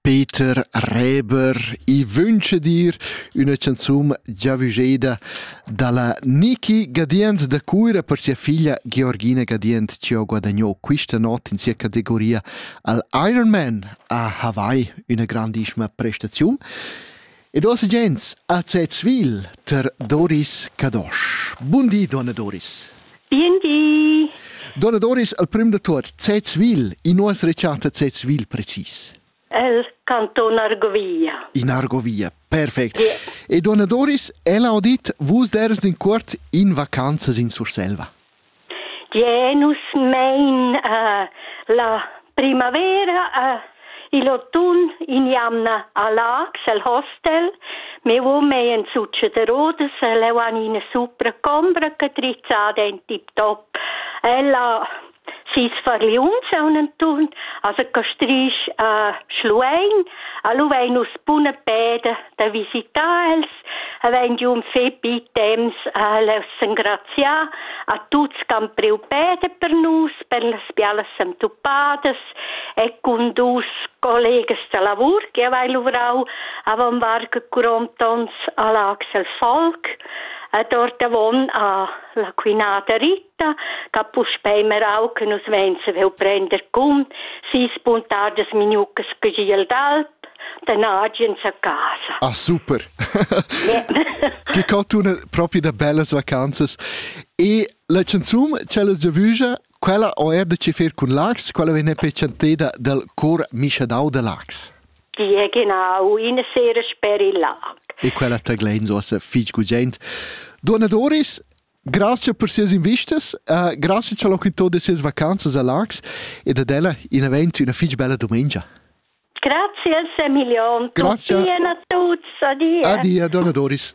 Peter Reber, i vundscha dir üna chanzun giavüscheda da la Niki Gadient da Cuira per sia figlia Georgina Gadient chi ho guadagno quista not in sia categoria al Ironman a Hawaii, üna grandissima prestaziun. Ed ossa gents, a Zezvil ter Doris Cadosch. Bun di, donna Doris. Bien di. Donna Doris, al prim de tot, Zezvil, in nuas recciata Zezvil precis? El canton Argovia. In Argovia, perfect. Yeah. E donna Doris, ella ho dit, vus deres din cuort in vacanzas in Surselva. Gie, nus mein uh, la primavera uh, igl autunn in jamna a Laax el hostel. Me uom ei en sutsche de rodas, leu han ina supra combra che trizzada in tip-top. Ella sis farliuns un enturn, also che strich uh, schluein, a lu vein nus buna peda da visitar els havein giu un fetg temps als engraziar a tuts che han priu peda per nus, per las bialas entupadas e cun dus collegas de lavur che havei luvrau avon varga curomt onns a Laxel Volk ed ordavon a la Quinada Rit da puspei merau che nus vein saviu prender cun sis puntadas minucas giel d'alp den agens a casa. Ah, super! Che cartuna propi da bellas vacanzas. E la canzun, quella giavügia, quella o er da ci fer cun Lax, quella venne pecenteda del cor Mischadau de Lax. Di genau, in sera speri là. E quella taglein so se fig gugent. Donna Doris, Grazie per sias invistas, uh, grazie al locutor de sias vacanzas a Lax ed ad ella in event una fitg bella domenica. Grazie Emilion. Grazie. Tutti a tutti. Adieu. Addio, donna Doris.